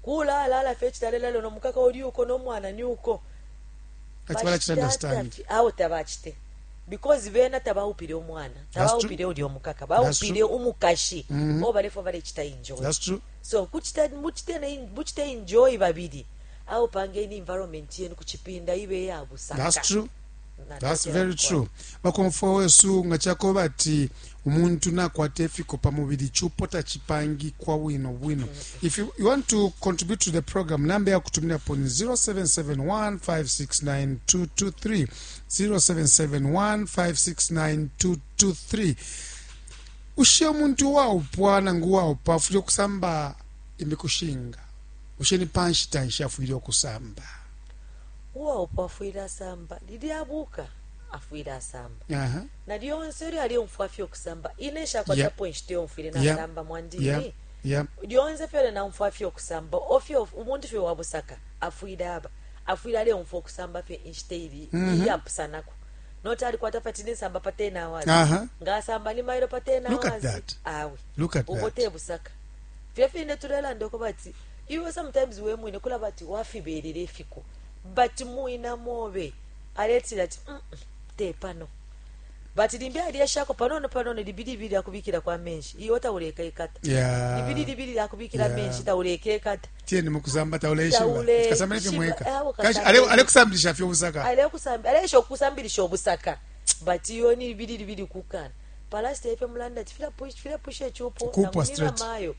kulaalala fye icitalalelo no mukaka uli uko no mwana ni uko Kati balachita understand. Tafi, awo tabachite because bena tabaupile umwana tabaupile uli omukaka baupile umukashi mm -hmm. o balefo balechita enjoy That's true. so kuchita muchite muchite enjoy babili awo pangeni environment yenu kuchipinda ibe yabusaka That's true. That's very true. Bakomfwa wesu nga chakoba ati umuntu nakwata efiko pa mubili chupo tachipangikwa bwino bwino. If you, you want to contribute to the program, namba ya kutumira po ni 0771569223 0771569223 ushe umuntu waupwa nangu waupa afwile okusamba imikushinga ushe ni panshita nshi afwile okusamba uwaupwa afwile asamba lilya abuka afwile asamba uh -huh. na lyonse ilyo alyomfwa fye ukusamba ine nshakwatapo yep. inshita yomfwile nasamba yep. mwandini yep. yep. lyonse fyole naumfwa fye ukusamba ofye umuntu fye wabusaka afwile aba afwile aleumfwa ukusamba fye inshita ili mm -hmm. iyapusanako noti alikwata pati ninsamba pa 10 hours uh -huh. ngaasamba ni mailo pa 10 hours awe ubo tebusaka fye fine tulelanda uko bati Iwe sometimes wemwine kulaba ati wafibelela ifiko but muina mobe aletila ati mm tepano but limbi alyeshako panono panono libilibili akubikilako amenshi iwe taulekaikata yeah. libililibili akubikila yeah. amenshi taulekekata tieni mukusamba tauleshibaasamba nefyo mweka alekusambilisha fye obusaka alesha okusambilisha obusaka but iyo ni libililibili kukana palasita efyo mulanda ati filapusha echupo namunina mayo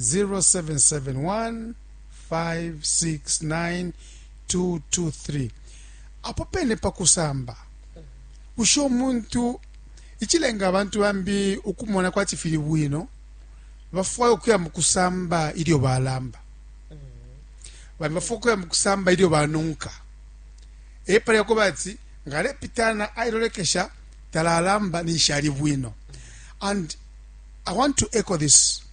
0771569223 apo pene pa kusamba bushe umuntu icilenga abantu bambi ukumona kwati fili bwino bafwaya ukuya mu kusamba ilyo balamba bambi bafwaya ukuya mu kusamba ilyo banunka epali yakuba ati ngalepitana ailolekesha talalamba ninshi ali bwino and i want to echo this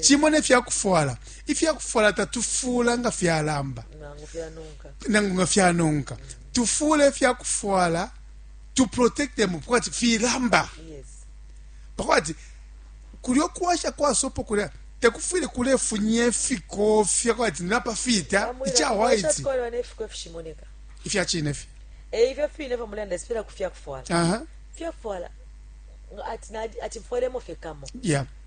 cimo ne fya kufwala ifya kufwala tatufuula nga fyalamba nangu nga fyanonka tufuula ifya kufwala to protect them pakwati filamba pakwati kulyo kuwasha kwa sopo kulya tekufwile kulefunya ifikofya kwati napa fita ica white ifya cine fye eh, ifyo fine fyo mulanda sipela kufya kufwala fya kufwala ati ati mfwelemo fye kamo yeah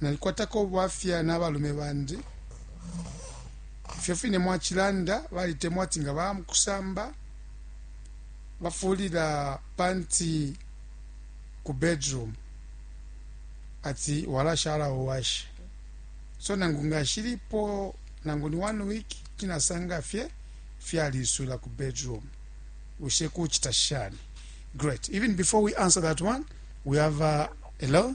Nalikwatako ubwafya na balume bandi. Ifyo fine mwacilanda, balitemwa ati nga baya mu kusamba bafuulila panti ku bedroom ati walashala uwashe. So nangu nga nshilipo nangu ni one week kuti nasanga fye fyaliiswila ku bedroom. Bushe kucita shani? Great. Even before we answer that one, we have a, hello?